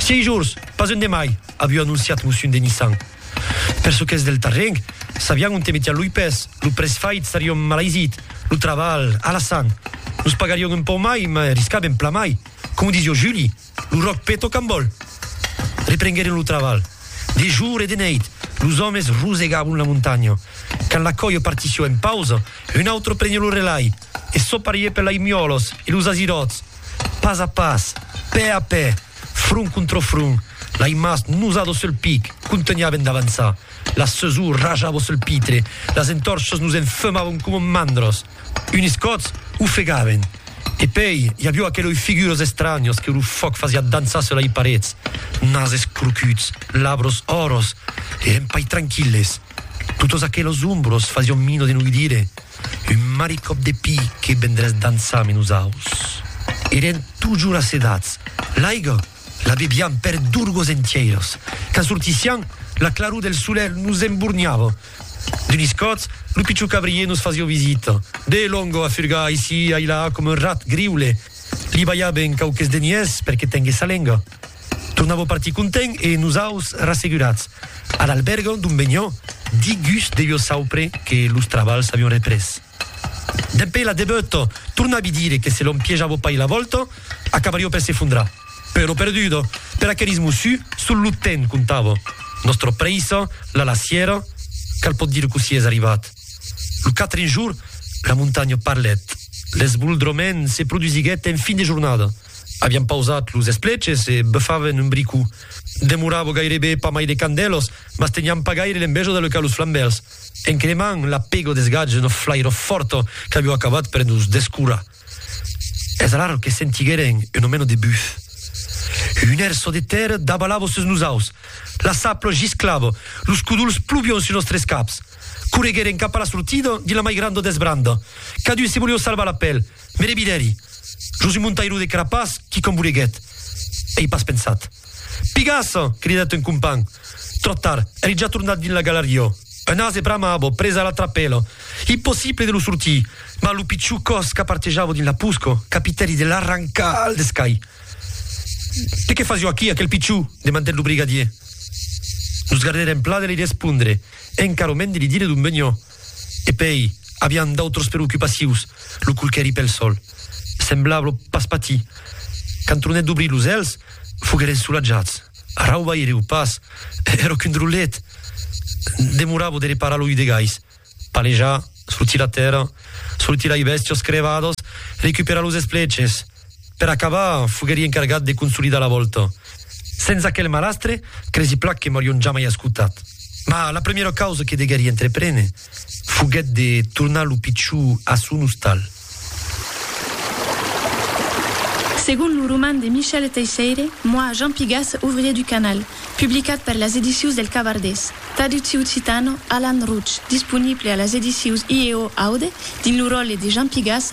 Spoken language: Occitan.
Sièi jorns, pas un de mai, aviu anonciat Moussun Denissan. Per çò qu'es del terren, sabián onte metián loi pès, lo prèç fait serion malaisit, lo trabalh, alasan. Nos pagarion un pauc mai, mai riscabem plan mai. Coma disió Juli, lo ròc peta o cambòl. Reprengueren lo trabalh. De jor e de neit, los òmes rosegabon la montanha. Quand la còia partissió en pausa, un autre prenió lo relai. e soparié per l'aimiòlos e los aziròts, pas a pas, pè a pè, front contra front, l'aimas nosado sul pic, contunhaven d'avançar, la sesor rajavo sul pitre, las entòrchas nos enfemavon coma mandros, unis còts ofegaven, e pei i avió aqueloi figuras estranhas que lo fòc fasiá dançar sul lai parets, nases crocuts, labros òros, e empaitrankilles, totas aquelas ombras fasión mino de no udire, Un maricòp de pi que vendràs dançar ame nosaus. Eren totjor asedats. L'aiga la bebiam per durgos entièiras. Quand sortissiam, la claror del solelh nos emborniava. D'unis còps, lo pichon cabrier nos fasiá visita. De longo a furgar aicí, ailà, coma un rat griule. Li balhaben quauques deniers per que tengues sa lenga. Tornavo partir content e nosaus rassegurats a l'alberga d'on venion, digús de jo saupre que los trabals avion représ. Dempè la debeut tornavi dire que se l'on piejavo pas la vòlta, acabario per s'efondrar. Però perdudo, per aqueris mossu, sol lo temps comptava. Nòstra prèissa, la lassièra, cal pòt dire cossí es arribat. Lo quatren jorn, la montanha parlèt. L'esboldrament se produsiguèt en fin de jornada. Avián pausat los espleches e befaven un bricó. Demorava gairebe pas mai de quant d'elos, mas tenián pas gaire l'enveja de lecar los flambèls. En cremant, la pego desgatge una flairor fòrta qu'avió acabat per nos descurar. Es alara que sentigueren una mena de buf. Un èr çò de tèrra dabalava sus nosaus. La sapla gisclava, los codols plovión sus nòstres caps. Corregueren cap a la sortida dins la mai granda desbranda. Cadun se volió salvar la pèl. Mere vidèri, jos un montairo de crapàs qui com voleguèt. Ei pas pensat. Pigas! cridèt un companh. Tròp tard, èri ja tornat dins la galariá. Un ase bramava, pres a la trapèla. Impossible de lo sortir. Mas lo pichon còs qu'apartejava dins la posca, capitèri de l'arrancar al descai. Que que fasió aquí, aquel pichon? demandèt lo brigadier. Nos gardèrem pla de li respondre e encara mens de li dire d'on venió. E pei, avián d'autras preocupacions, lo colquèri pel sol. Semblava pas patir. Quand tronèt d'obrir los èlhs, foguèren solatjats. Arrau vaireu pas, èra qu'un drolet! Demorava de reparar lo udegais, palejar, sortir la tèrra, sortir lai bèstias crevadas, recuperar los espleches. Per acabar, foguèri encargat de consolidar la vòlta. Sens aquel malastre, cresi plan que m'aurion jamai escotat. Mas la primièra causa que deguèri entreprene foguèt de tornar lo pichó a son ostal. Segon lo roman de Michel Teisseire, Moi, Jean Pigas, ouvrier du canal, publicat per las edicius del Cabardés, tradutsi occitano, Alan Routsch, disponible a las edicius IEO Aude dins lo ròtle de Jean Pigas,